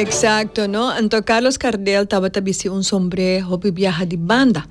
Exacto no anto Carlos Cardel tabata bisti un sombre hopi biaha di banda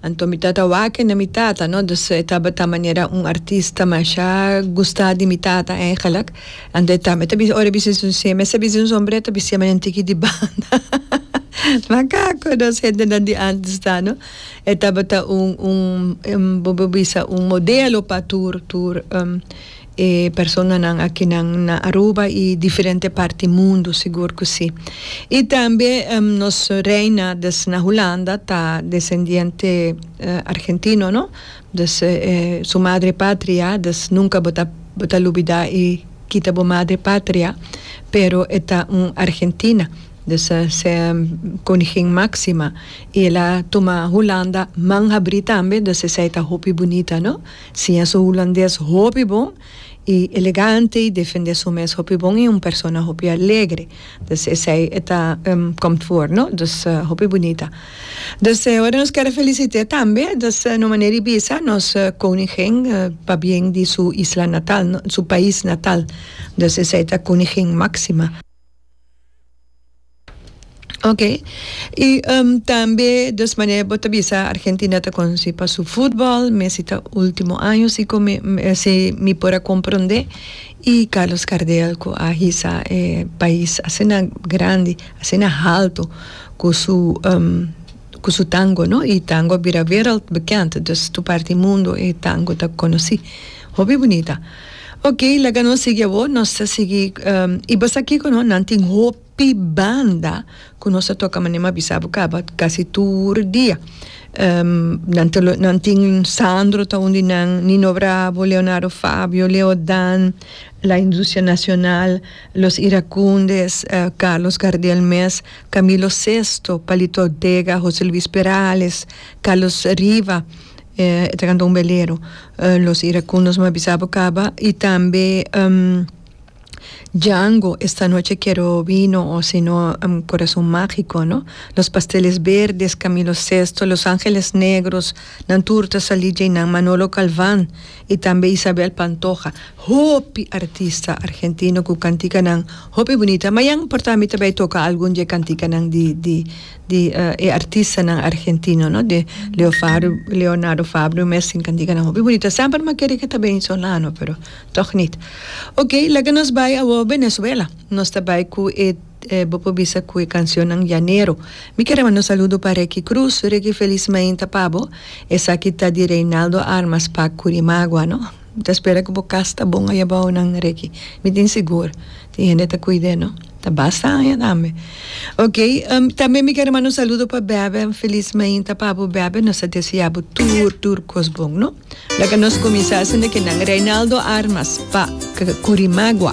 anto mi tata wake na mi tata no dus e tabata manera un artista masha gusta di mi tata eigenlijk anto e tambe ta bisti ora e bisti su semi esa bisti un sombre ta bisti manera un tiki di banda makaku dos gentenan di antes ta no e tabata un un bo bisa un modelo pa tur tur. E personanan akinan na Aruba i diferente parti mundu sigur ku si. I tambe nos reina des na Hulanda ta desendiente argentino no, dus su madre patria, dus nunka bo ta bo ta lubidá i kita bo madre patria, pero e ta un argentina, dus koningin Máxima i el a tuma Hulanda man habrí tambe, dus esei ta hopi bunita no. Siña su hulandes hopi bon y elegante y defende su mes hopi bon y un persona hopi alegre. Dus esey e ta komt voor no. Dus hopi bunita. Dus ora nos ker a felicite tambe dus no manera y bisa nos koningin pabien di su isla natal no, su pais natal. Dus esey ta koningin Maxima. Ok. Y tambe des manera bo ta bisa Argentina ta conoci pa su futbol, Messi ta ultimo año si cu mi si mi por a comprende y Carlos Gardel cu a hisa e pais asina grandi asina halto cu su cu su tango no y tango a bira wereldbekend, dus tur parti mundo e tango ta conoci. Hopi bunita. Ok laga nos sigui awor nos ta sigui y basa kico no nan tin hopi banda cu nos ta toca manera mi a bisa bo caba casi tur dia nan ta nan tin Sandro ta un di nan Nino Bravo Leonardo Fabio Leo Dan La Industria Nacional Los Iracundes Carlos Gardel mes Camilo Sesto Palito Ortega Jose Luis Perales Carlos Riva E ta canta un belero los iracundos m'a bisa bo caba y tambe Django esta noche quiero vino o sino corazon magico no los pasteles verdes Camilo sesto los angeles negros nan tur ta sali djey nan Manolo Galvan y tambe Isabel Pantoja hopi artista argentino cu canticanan hopi bunita ma ya no importa mi ta bay toca algun dje canticanan di di di e artistanan argentino no di Leo Fabio Leonardo Fabio mes tin can diga nan hopi bunito a semper mi a kere que ta bini solano pero toch nit ok laga nos bay awor Venezuela nos ta bay cu e bo por bisa cu e cancionnan llanero mi kere manda un saludo pa Reky Cruz Reky feliz mainta pa bo esaki ta di Reinaldo Armas pa Curimagua no. Mi ta spera cu bo cas ta bon aya bao nan Ricky. Mi tin sigur tin hende ta cuid'e no. Ta basta aña tambe. Ok, tambe mi ker a manda un saludo pa Bebe. Un feliz mainta pa bo Bebe. Nos ta desea bo tur tur cos bon no. Laga nos cuminsa esende cu nan. Reinaldo Armas pa Curimagua.